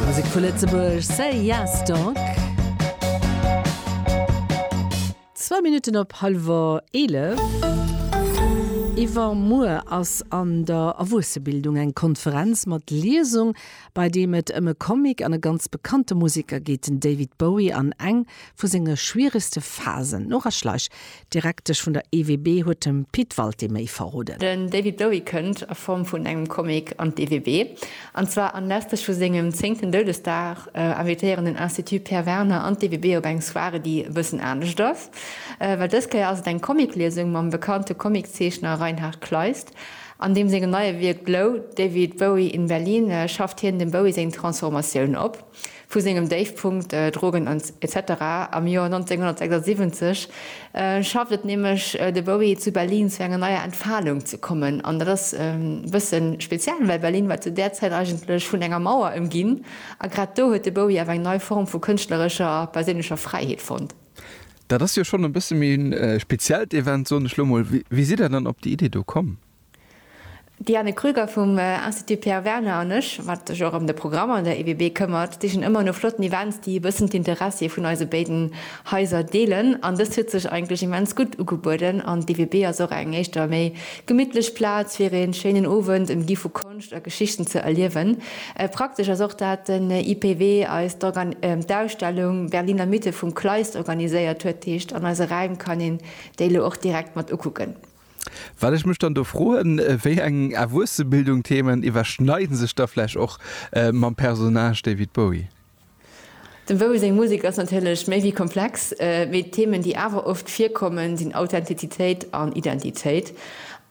Musek vu Lëtzebuerg, Say Yes Dog. Zwou Minutten op hallwer eelef. Iwwermuer ass an der Erwuessebildung eng Konferenz mat Liesung, bei deem et ëm e Comic an e ganz bekannte Musiker geet, den David Bowie an eng vu senge schwieregste Phasen. Nora Schleich, D'Direktesch vun der EWB huet dem Pit Walté méi verroden. Den David Bowie kënnt, a Form vun engem Comic, an d'EWB. An zwar anlässlech vu sengem zéngten Doudesdag invitéieren den Institut Pierre Werner an d'EWB op eng Soirée, déi e bëssen anescht ass, well dës Kéier ass et eng Comicliesung mam bekannte Comiczeechner Reinhard Kleist. An deem sengem neie Wierk Blow, David Bowie in Berlin schafft hien dem Bowie seng Transformatioun op. Vu sengem Déifpunkt, Drogen etc. Am Joer 1976 schafft et nämlech de Bowie zu Berlin zu enger neier Entfalung ze kommen. An dat ass e bësse speziell, well Berlin war zu där Zäit eigentlech vun enger Mauer ëmginn a grad do huet de Bowie awer eng nei Form vu kënschtlerescher a perséinlecher Fräiheet fonnt. Dat ass jo schonn e bësse méi e speziellt Event, soen ech lo mol. Wéi sidd Der dann op déi Idee do komm? D'Diane Krüger vum Institut Pierre Werner an ech, wat sech och ëm de Programm an der EWB këmmert, sichen ëmmer no flotten Events, déi e bëssen d'Interessie vun eise béiden Haiser deelen. An dëst huet sech eigentlech immens gutt ugebueden an d'EWB ass och eng éischter méi gemittlech Plaz, fir ee schéinen Owend ëmgi vu Konscht a Geschichten ze erliewen. Praktesch ass och, dat den IPW eis d'Ausstellung Berliner Mythe vum Kleist organiséiert huet, heescht an eise Räim kann een déi elo och direkt mat ukucken. Wat ech mech dann do froen, wéi eng Erwuessebildung-Themen iwwerschneide sech da vläch och mam Personnage David Bowie? Dem Bowie seng Musek ass natierlech méi wéi komplex, mee d'Themen, déi awer oft virkommen, sinn Authentizitéit an Identitéit.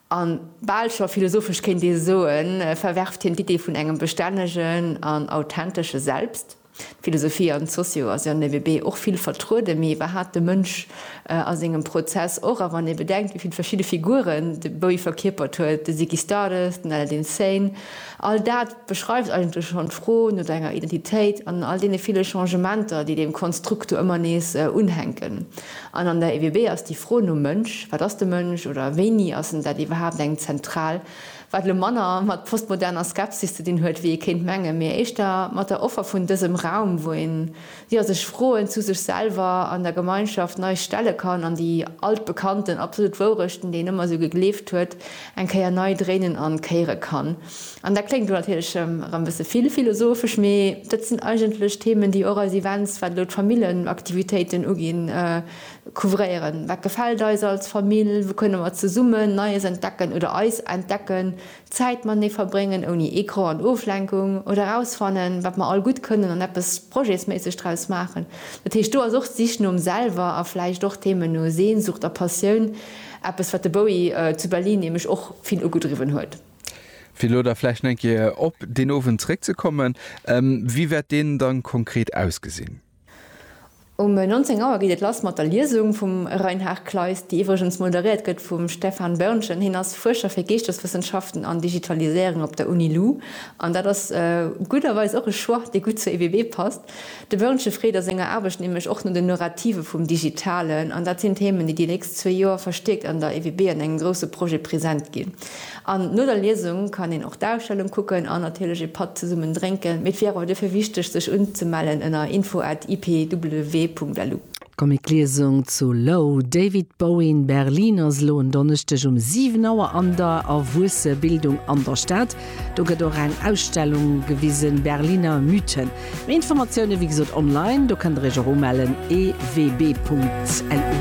A bal scho philosophesch kéint ee soen, verwerft hien d'Iddi vun engem bestännegen an authentesche Selbst? D'Philosophie an d'Socio ass jo NEWB och vill vertrueden, mee wat hat de Mënsch a sengem Prozess och? A wann ee bedenkt, wéi vill verschidde Figuren de Bowie verkierpert huet, de Ziggy Stardust, den Aladdin Sane, all dat beschreift eigentlech schonn d'Fro no denger Identitéit an all deene ville Changementer, déi deem Konstrukt do ëmmer nees unhänken. An an der EWB ass déi Fro nom Mënsch, wat ass de Mënsch oder wéini ass en dat, iwwerhaapt eng zentral. wat elo manner mat postmoderner Skepsis ze dinn huet, wéi ee kéint mengen, mee éischter mat der Offer vun dësem Raum, wou een, jo, sech Froen zu sech selwer an der Gemeinschaft nei stelle kann an déi altbekannten absolut Wourechten, déi een ëmmer esou gegleeft huet, eng Kéier nei dréinen an kéiere kann. An dat kléngt elo natierlech erëm e bësse vill philosophesch, mee dat sinn eigentlech Themen, déi och eis Events, wat elo d'Famillenaktivitéiten uginn, Couvréieren, Wat gefält eis als Famill? Wou kënne mer zesummen Neies entdecken oder eis entdecken? Zäit matenee verbréngen, ouni Ecran an Oflenkung, oder erausfannen, wat mer all gutt kënnen an eppes projetsméisseg draus maachen. Dat heescht, do ass och d'Sich nom Selwer a vläicht och d'Thema no Sehnsucht a Passioun eppes, wat de Bowie zu Berlin nämlech och vill ugedriwwen huet. Fir elo da vläicht nach eng Kéier op deen Owend zeréckzekommen, Wéi wäert deen da konkret ausgesinn? Um 19 Auer geet et lass mat der Liesung vum Reinhard Kleist, déi iwwregens moderéiert gëtt vum Stefan Börnchen. Hien ass Fuerscher fir Geeschteswëssenschaften an Digitaliséierung op der Uni Lu. An dat ass gudderweis och e Choix, dee gutt zur EBB passt. De Börnchen freet a senger Aarbecht nämlech och no den Nurrative vum Digitalen. An dat sinn Themen, déi déi nächst zwee Joer verstiärkt an der EBB an engem grousse Projet present ginn. An no der Liesung kann een och d'Ausstellung kucken an natierlech ee Patt zesummen drénken. Mee et wier awer duerfir wichteg sech unzemellen ënner info at ipw.lu. D'Comicliesung zu Low, David Bowie in Berlin ass elo en Donneschdeg um 7 Auer an der Erwuessebildung an der Stad. Do gëtt och eng Ausstellung gewisen, Berliner Mythen. Méi Informatioune wéi gesot online, do kënnt der iech och umellen, ewb.lu.